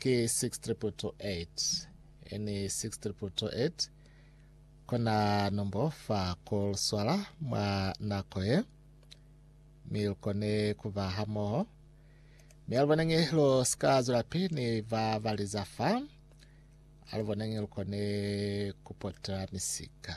ki 6228 NE 6228 Kona nombo fa ku lu swala mwa nako ye, mi lu kone ku ba hamoho. Mi a lu boneñi lu si ka zwelapi ni ba ba li za fa, a lu boneñi lu kone ku potela misika.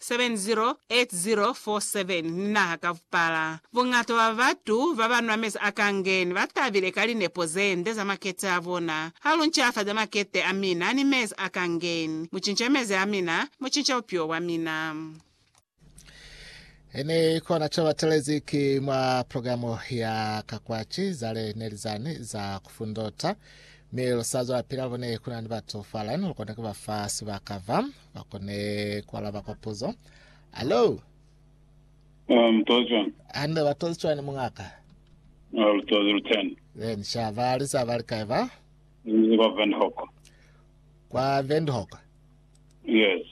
708047 ni naha ka bupala. Buñata bwa batu babanwa mezi a kangeni batabile ka linepo zende za makete abona. Ha lu ncafaza makete amina ni mezi a kangeni, mucinca mezi amina, mucinca bupilo bwamina. Ini kona co batelezi ki mwa programo ya ka kwaci, zale neli zani za kufundota, mi lu sa zwelapili halubone kunani batu fala, ini lukona kubafa sibaka va ba kone ku alaba kwa puzo. Hello. Ah, mtozi wani. Hande ba tozi chwani mungaka. Ah, lutozi luteni. Then sha ba li sa ba li kae ba? Ni kwa Windhoek. Kwa Windhoek. Yes.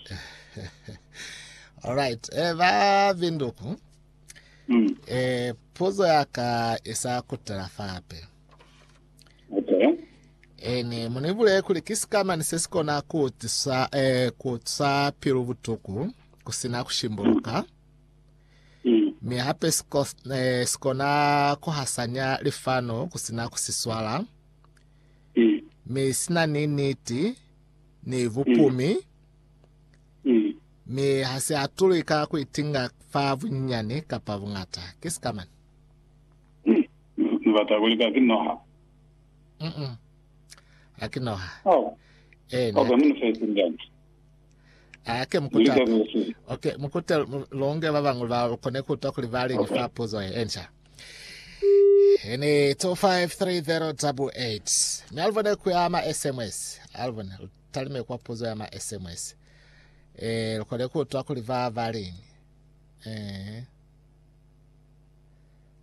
All right. Eh ba Windhoek. Mm. Eh puzo ya ka isa kutela fape. Ene mu ni bulele kuli ki sikamani se si kona ku utisa, eh, ku utisa pilu butuku ku sina ku shimbuluka. Mi hape si ko- eh, si kona ku hasanya lifano ku sina ku si swala. Mi sina ni niti ni bupumi. Mi ha si atulwi ka ku itinga fa bunyinyani kapa bungata. Ki sikamani. Ni bata ku lika ki noha. Mm-mm. A ki noha. Oh. Eh, ni Okay, munu fesi ndani. Ake mukuta. Lika kusi. Okay, mukuta longe ba bangwe ba kone kuta kuli ba lengi fa puzo e ensha. Ene 253088. Mi alvone ku ya ma SMS. Alvone talime kwa puzo ya ma SMS. Eh, kone kuta kuli ba ba lengi. Eh.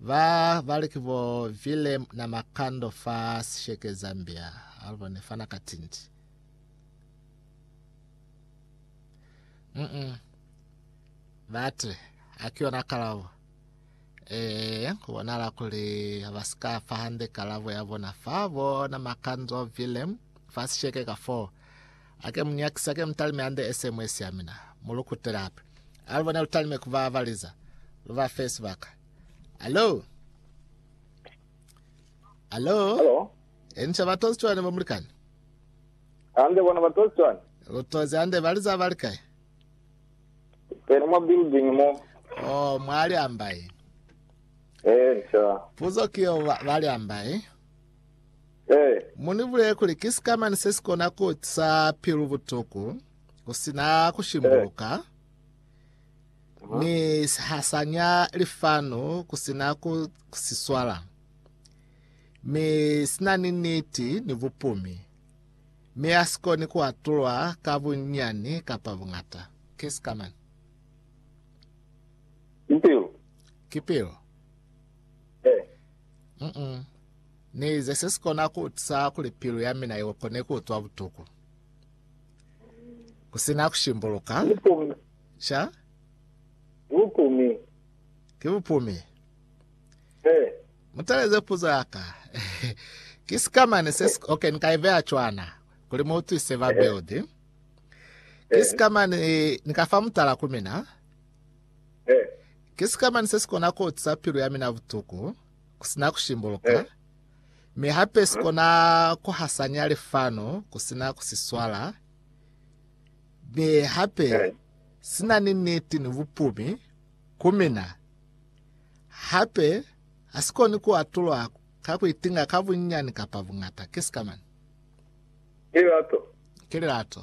Ba bali ki bo Willem na Makando fa Sesheke, Zambia, albo ne fana ka tinti. Mm-mm. Bati, haki yona kalabo. Ee, kubonala kuli ba si ka fa hande kalabo ya bona fa bona Makando Willem fa Sesheke ka foo. Ake mu nyakise, ake mu talime hande ese mwe sia mina, mu lu kutele hape. A lu bone lu talime ku ba valiza, lu ba fe sibaka. Alo? Alo? Alo? Enca ba tozi cwani bo mulikani? Hande bona ba tozi cwani? Lu tozi hande baliza ba likai? Pene mwa building mo. Oh, mwa liambai. Enca. Puzo kiyo ba, ba liambai. Ee. Mu ni bulele kuli ki sikamani se si kona ku utisa pilu butuku ku si na ku shimbuluka, mi si hasanya lifanu ku si na ku si swala, mi si na ni niti ni bupumi, mi ha si koni ku atulwa ka bunyani kapa bungata. Ki sikamani. Ki pilu. Ki pilu. Ee. Mm-mm. Ni ize se si kona ku utisa kuli pilu ya mina i kone ku utwa butuku. Ku sina ku shimbuluka. Sha? Bupumi. Ki bupumi. He. Mutaleze puzo ya ka. Ki sikamane se si... Okay, ni ka i veya cwana. Kuli mu utwise ba build. Ki sikamane ni ka fa mutala ku mina. Ki sikamani se si kona ku utisa pilu ya mina butuku ku sina ku shimbuluka, mi hape si kona ku hasanya lifano ku sina ku si swala, mi hape si na ni niti ni bupumi ku mina. Hape ha si koni ku atulwa ka ku itinga ka bunyinyani kapa bungata. Ki sikamani? Ki lilato. Ki lilato.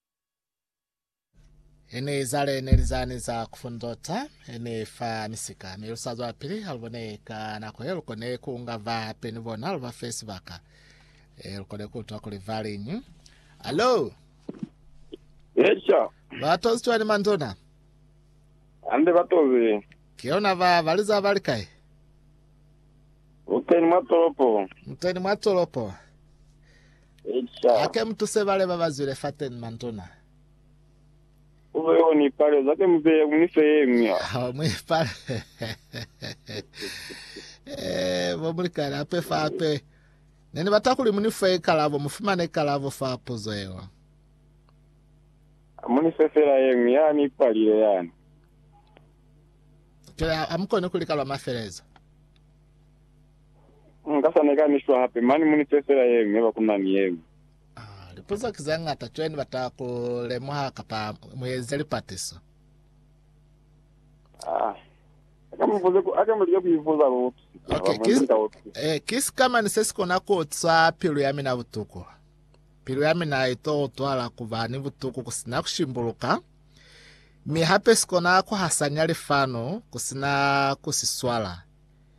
Ene izale neli zani za kufundota, ene fa misika, mi lusazwa pili halubone ka nako ye lukone kuunga va hape ni bona luba fe sibaka. E lukone kuutwa kuli valiñi. Alo, Esha, batozi cwani mandona? ande batozi, Kiona ba baliza bali kai? uteni mwa tolopo. Muteni mwa tolopo. Hake mutuse bale babazwile fateni mantuna. Hao muipale. Eeh, bo mulikani hape fa hape. Neni bata kuli munife ikalabo, mufumane ikalabo fa puzo yeo. Munife fela yengwi yani ipalile yani. Kile amukoni kulikalwa mafelezo. Nkasa neka ni shwa hape mani muni tee fela yeñwi yaba kunani yeñwi. Ah, lipuzo ki zeñata cwani bata ku lemuha kapa mueze lipatiso. Ah, aka mubuze ku aka mulike ku ibuza lu utusisa haba Okay, mwendi ki, nka utusisa. eh, ki sikamani se si kona ku utisa pilu ya mina butuku. Pilu ya mina i to utwala ku ba ni butuku ku sina ku shimbuluka, mi hape si kona ku hasanya lifano ku sina ku si swala.